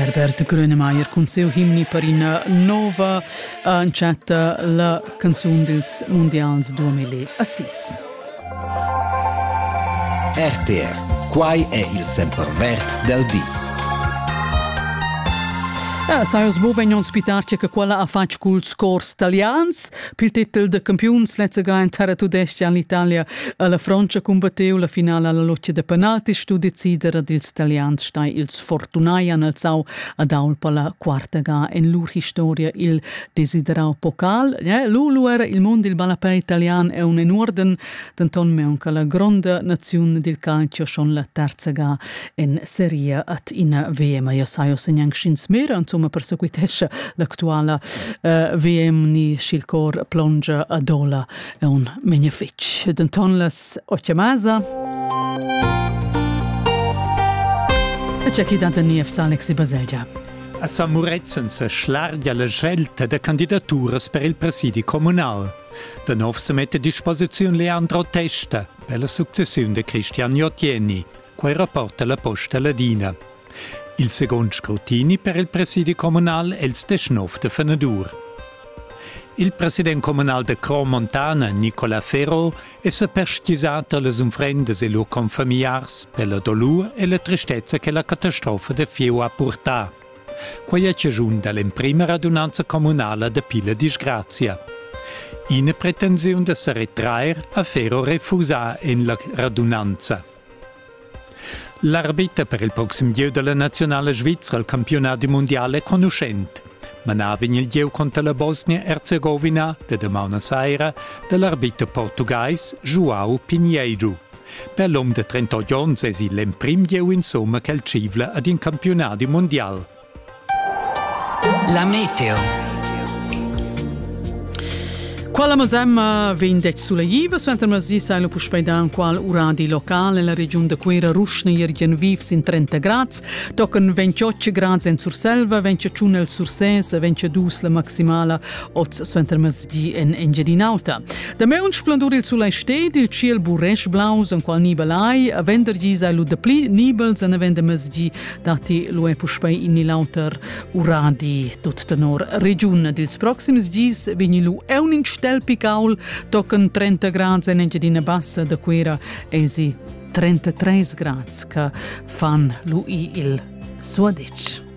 Herbert Grönemeyer cun siu himni per ina nova entschatta la canzun dils mondials 2006. RTR Quai è il sempervert del di. Eh, sai os bo vegn ospitar che quella ha fatg culs cors talians, Pil titel da campiuns lezzaga en terra tudestga en l'Italia a la Francia cumbatteu la finala alla loccia da penalti stu decider ad ils italians stai ils fortunai an alzau ad aul per la quarta ga en lur historia il desiderau pokal. Ja, Lulu era il mond il ballapè italian è un en orden, denton meunca la gronda naziun dil calcio schon la terza ga en seria at ina VM. Io sai ossa gnanc sch'ins mera, insomma persequitescha l'actuala uh, VM ni sch'il cor plongia ad ola è un menja fitg. Denton las occhiamasa. E c'è chi danta niev Alex Baselgia. A San Murezzan se schlargia la scelta da candidaturas per il presidi comunal. Da nov se mette a disposizione Leandro Testa per la successione di Cristian Jottieni. Quei rapporta la Posta Ladina. Il second scrutini per il presidi communal è il 19 de Fenedur. Il president communal de Cron Montana, Nicola Ferro, è sa perstgisat alle unfrendes e lur confamiliars per la dolur e la tristezza che la catastrofa de Fieu ha purtà. Quai è chaschun da l'emprima radunanza communala dapi la disgrazia. Ina pretensiun da sa retrair ha Ferro refusà en la radunanza. L'arbiter per il proxim gieu da la nazionala svizra al campionat mondial è conuschent. Manà vegn il gieu contra la Bosnia-Erzegowina da damaun a saira da l'arbiter portugais João Pinheiro. Per l'um de 38 onns es il emprim gieu insomma ch'el tschivla ad in campiunadi mundial. La meteo. Quella masemma vegn det suleiva suenter masi sai lo puspei dan qual uradi local nella regiun de Quera Ruschne Jürgen Viefs in 30 grads, tochen 28 grads en Surselva, 25 el Sursès, 22 la maximala oz suenter masi en Engiadinauta. Damai un splendur il sulai sted, il ciel buresch blaus, en qual nibel ai, a venderghi sai lu dapli nibels en avenda mezgi, dati lu è puspei in ni l'auter uradi. Tut tenor regiun dils proxims gis vegni lu un in stel picaul, tocan 30 grads en Engiadina Bassa da Cuera, esi 33 grads che fan lui il suadetsch.